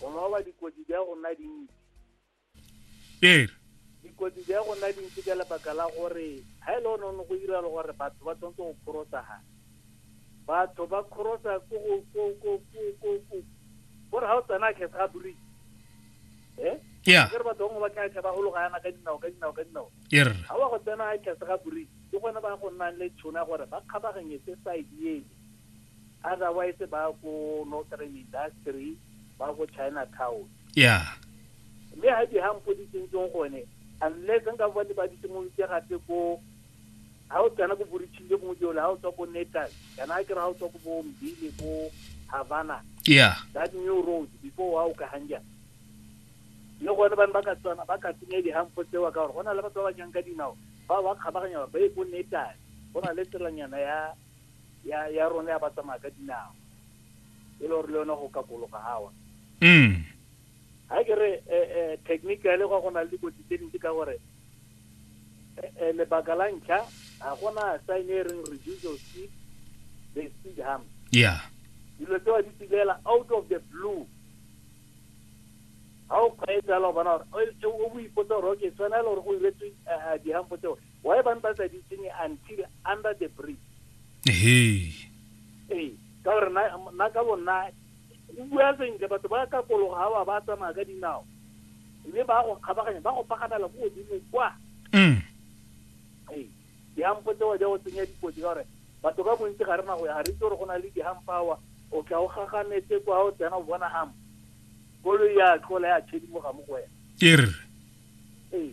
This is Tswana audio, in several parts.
go loba dikotsi di go nna dintsi ee dikotsi di go nna dintsi ka lebaka la gore ga e le one one go direla gore batho ba tshwanetse go kgorosa ga batho ba kgorosa ko go ko ko ko ko ko gore ga o tsena khe sa buri eh yeah ke re batho bangwe ba tla tlha ba gologa yana ka dinao ka dinao ka dinao er ga wa go tsena khe sa buri ke gone ba go nnang le tšhona gore ba kgabaganyetse side ene otherwise ba ko northern industry ba ko china town yeah mme ga di hampo di tsentseng gone unless nka ba le ba di simolotse gape ko ga o tsena ko boritšhing le gongwe jole ga o tswa ko natal kana a kry ga o tswa ko bombile ko havana yeah that new road before wa o ka hanja le gone bane ba ka tswana ba ka tsenya dihampo tsewa ka gore go na le batho ba ba jang ka dinao ba ba kgabaganya gore ba ye ko natal go na le tselanyana ya ya ya rona ya ba tsamaya ka dinao e le gore le yone go kakologa gawa mm ga ke re eh, eh, technically go go na le dikotsi tse dintsi ka gore eh, eh, lebaka la ntlha ga gona sign e reng reduce your speed the speed harm yeah dilo tseo di tsilela out of the blue ga o kgweetsa la o bona gore o- o o ipotsa gore okay tshwanela gore go iretswe eh, eh, dihampo tseo Why ba ntse ba sa di tsenye until under the bridge? Hey. Ee, ka gore na na ka bonna o bua sentle batho ba ka kologa ha ba ba tsamaya ka dinao. Mme ba go kgabaganya ba go pagamela ko godimo kwa. Mm. Ee, dihampo tseo ja go tsenya dikotsi ka gore batho ka bontsi ga rena go ya ga re itse gore go na le dihampawa o tla o gaganetse kwa o tsena o bona hampo koloi ya tlola ya tshedimoga mo go wena Ke re. ee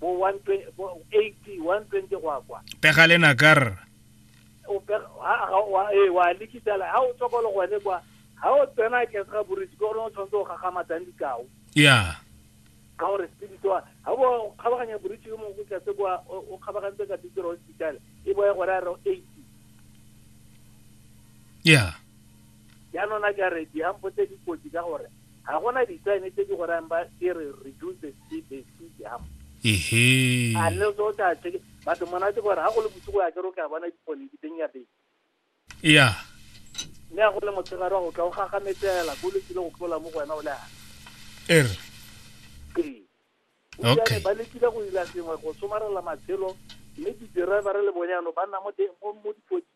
bo 120 bo 80 120 go ya kwa pega le nakar o pega ha wa e wa likisa la ha o tsokolo gone kwa ha o tsena ke sa burisi go no tshwanetse go gagama tsang dikao ya ka gore spirit wa ha bo khabaganya burisi yo mongwe ka se kwa o o khabagantse ka teacher hospital e boye gore a re 80 ya ya nona ka re di hampotse dikotsi ka gore ga gona ditsene tse di go rayang ba ke re reduce the speed the speed jam ehe a le so tla tsheke batho monate gore ga go le bosigo ya kere o ka bona dipone di teng ya beng ya mme a go le motshegare wa go tla o gagametela ko le tsile go tlola mo go wena o le a er ee Okay. ba lekile go ila sengwe go somarela matshelo mme di-driver le bone yanong ba nna mo teng mo mo dipotsi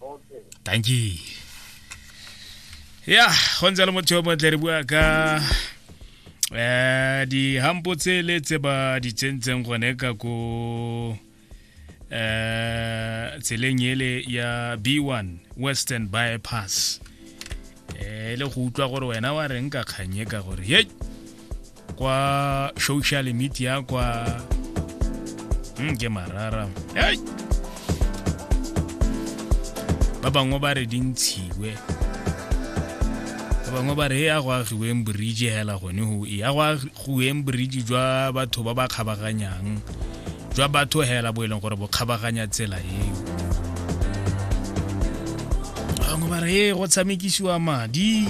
okay thank you ya go ntse le motho yo montle re bua ka um dihampo tsele tse ba di tsentseng gone ka ko um tseleng ele ya b1 western bypass eh le go utlwa gore wena wa reng ka kganye ka gore ye kwa social media kwa mm, ke marara hey! ba bangwe ba re di ntshiwe ba bangwe ba re e ya go agiweng borije hela gone go e ya go Goeng boridie jwa batho ba ba kgabaganyang jwa batho hela bo e leng gore bo kgabaganya tsela eo bangwe ba re ee go tshamekisiwa madi